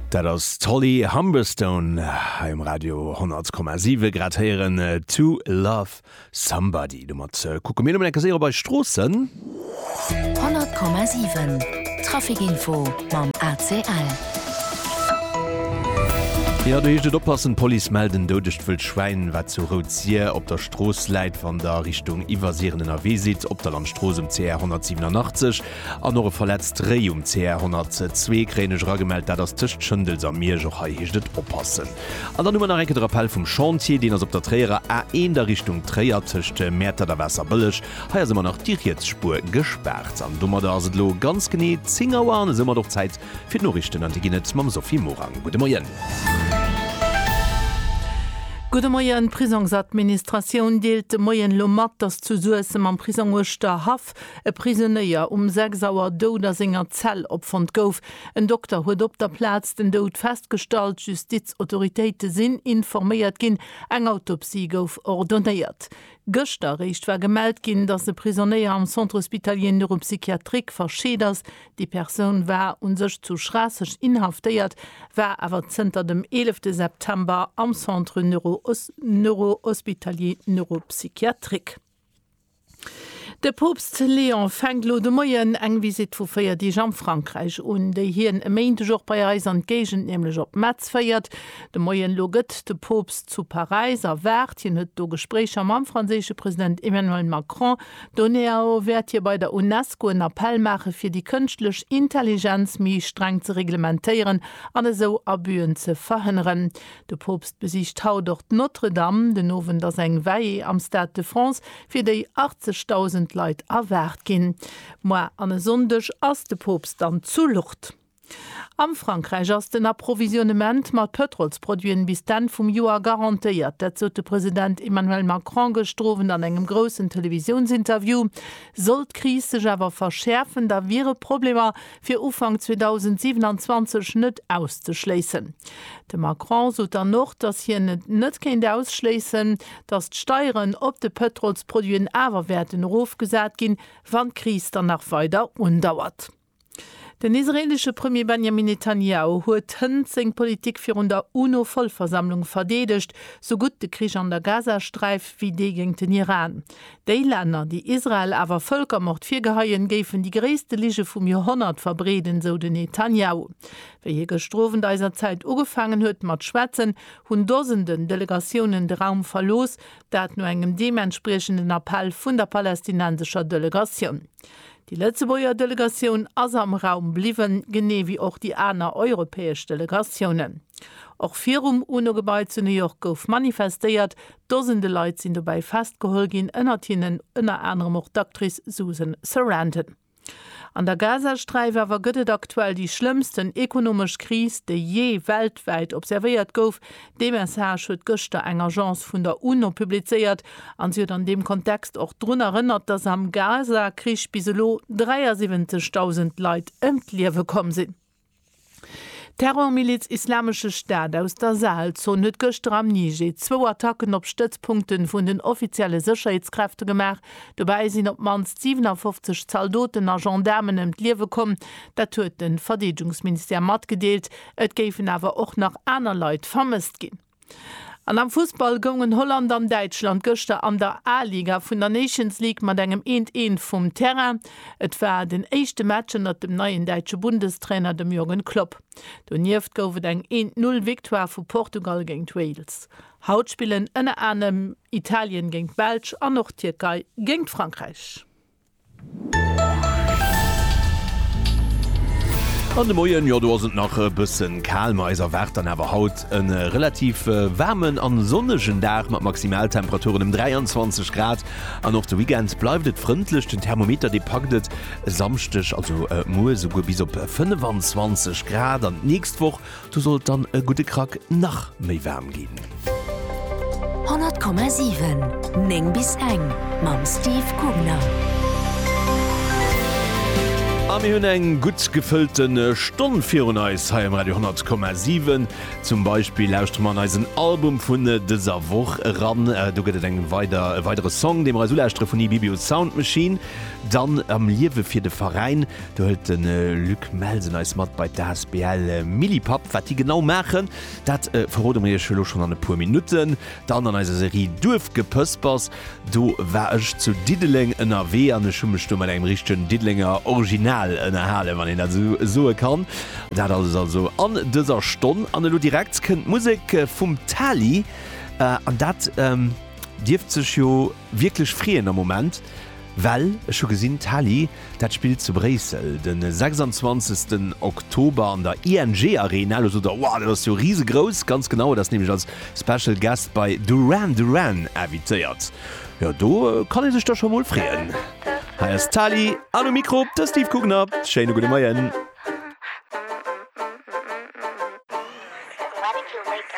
Dat ass d'Holly Humberstone hei um Radio 100,7. Grad héieren To Love Somebody. Domat kucke mir lo mol eng Kéier séier op eis Stroossen. 100,7 Trafikinfo mam ACL. Jo, do heescht et oppassen, D'Police mellt en doudegt Wëldschwäin, wat zu Rout-Sir op der Strooss läit, wann der Richtung Iwwersiren ënnerwee sidd, op der Landstrooss um CR 187. An och e verletzt Réi um CR 102 kréien ech eragemellt. Dat ass tëscht Schëndels a Miersch. Och hei heescht et oppassen. An dann hu mer nach enke de Rappell vum Chantier. Deen ass op der Tréierer A1 a Richtung Tréier tëscht Mäertert a Waasserbëlleg. Hei ass ëmmer nach déi riets Spuer gespaart. An domadder ass et elo ganz genee 10 Auer an esoumat och Zäit fir d'Noriichten. An déi ginn et mam Sophie Morang. Gudde Moien. Gudde Moien. D'Prisongsadministratioun deelt de Moien elo mat, datt zu Suessem am Prisong Uerschterhaff Nacht e Prisonéier um 6 Auer dout a senger Zell opfonnt gouf. En Dokter huet op der Plaz den Doud festgestallt. D'Justizautoritéite sinn informéiert ginn, eng Autopsie gouf ordonéiert. Gëschter eréischt war gemellt ginn, dass e Prisonéier am Centre hospitalier neuropsychiatrique verscheet ass. Déi Persoun war u sech zu Schraasseg inhaftéiert, war awer zënter dem 11 September am Centre neurohospitalier neuropsychiatrique. De Poopst Léon fänkt elo de Moien eng Visitt vu 4 Deeg am Frankräich un, déi hien e Méindeg och bei eis an d'Géigend, nämlech op Metz féiert. De Moien elo gëtt de Poopst zu Paräis erwaart. Hien huet do Gespréicher mam franséische President Emmanuel Macron. Doneao wäert hie bei der UNESCO en Appell maache fir déi kënschtlech Intelligenz méi streng ze reglementéieren an esou Abüen ze verhënneren. De Poopst besicht haut och d'Notre-Dame. Den Owend ass eng Veillée am Stade de France, fir déi 80.000 Leit erwaart ginn. Moar an e Sonndeg ass de Poopst dann zu Lourdes. Am Frankräich ass den Approvisionnement mat Pëtrolsproduiten bis d'Enn vum Joer garantéiert. Dat sot de President Emmanuel Macron gëschter Owend an engem groussen Televisiounsinterview. Sollt d'Kris sech awer verschäerfen, da wiere Problemer fir Ufank 2027 net auszeschléissen. De Macron sot dann och, datt hien et net kéint ausschléissen, datt d'Steieren op de Pëtrolsproduiten awer wäerten erofgesat ginn, wann d'Kris dann nach weider undauert. Den israeelesche Premier Benjamin Netanjahu huet hënt seng Politik virun der UNO-Vollversammlung verdeedegt, sou gutt de Krich an der Gazasträif wéi dee géint den Iran. Déi Länner, déi Israel awer Vëlkermord virgeheien, géifen déi gréisste Lige vum Joerhonnert verbreeden, sou den Netanjahu. Wéi hie gëschter Owend eiser Zäit ugefaangen huet mat schwätzen, hunn Dosenden Delegatiounen de Raum verlooss, dat no engem deementspriechenden Appell vun der palästinensescher Delegatioun. Déi Lëtzebuerger Delegatioun ass am Raum bliwwen, genee wéi och déi aner europäesch Delegatiounen. Och virum UNO-Gebai zu New York gouf manifestéiert, Dosende Leit sinn dobäi festgeholl ginn, ënnert hinnen ënner anerem och d'Actrice Susan Sarandon. An der Gazasträif awer gëtt et aktuell déi schlëmmsten ekonomesch Kris, déi jee weltwäit observéiert gouf. Dee Message huet gëschter eng Agence vun der UNO publizéiert an si huet an deem Kontext och drun erënnert, datt am Gaza-Krich bis elo 73.000 Leit ëm d'Liewe komm sinn. D'Terrormiliz Islamesche Staat aus der Sahelzon huet gëschter am Niger zwou Attacken op Stëtzpunkte vun den offizielle Sécherheetskräfte gemaach. Dobäi sinn op d'mannst 57 Zaldoten a Gendaarmen ëm d'Liewe komm. Dat huet de Verdeedegungsministère matgedeelt. Et géifen awer och nach aner Leit vermësst ginn. An am Fussball goungen Holland an Däitschland gëschter an der A-Liga vun der Nations League mat engem eent eent vum Terrain. Et war den éischte Match ënnert dem neien däitsche Bundestrainer, dem Jürgen Klopp. Donieft gouf et eng eent Null Victoire vu Portugal géint Wales. Haut spillen ënner anerem Italien géint d'Belsch an och d'Tierkei géint Frankräich. An de Moien, jo do ass et nach e bëssen kal, ma eis erwaart dann awer haut e relativ waarmen an sonnegen Dag mat Maximaltemperaturen em 23 Grad. An och de Weekend bleift et frëndlech, den Thermometer dee packt et e Samschdeg, also muer, esouguer bis op 25 Grad. An d'nächst Woch Do sollt dann e gudde Krack nach méi waarm ginn. 100,7, 9 bis eng mam Steve Kugner. A mir hunn eng gutt gefëllte Stonn virun eis hei um Radio 10,7. Zum Beispill lauschtere mer an eisen Album vun dëser Woch eran. Do gëtt et eng weider e weidere Song, dee mer eis ulauschtere vun Ibibius Sound Machine. Dann am Liewe fir de Veräin. Do hëlt de Luc Melsen eis mat bei d'ASBL Millipap. Wat déi genau maachen, dat verrode mir iech elo schonn an e puer Minutten. Dann an eiser Serie Duerfgepëspers, do war ech zu Diddeleng ënnerwee an ech hu mech do mat engem richtegen Diddelenger Original ënnerhalen, wann een dat esou soe kann. Dat alles also an dëser Stonn. An elo direkt kënnt d'Musek vum Tali an dat dierft sech jo, Wierklech freeën am Moment, well ech hu gesinn, d'Hali dat spillt zu Bréissel de 26 Oktober an der ING Arena. Lo sot der, Wow, dat ass jo risegrouss! Ganz genau, et ass nämlech als Special Guest bei Duran Duran invitéiert. Jo, do kann ee sech da scho mol freeën. Hei ass d'Hali an um Mikro de Steve Kugner. Schéine gudde Moien.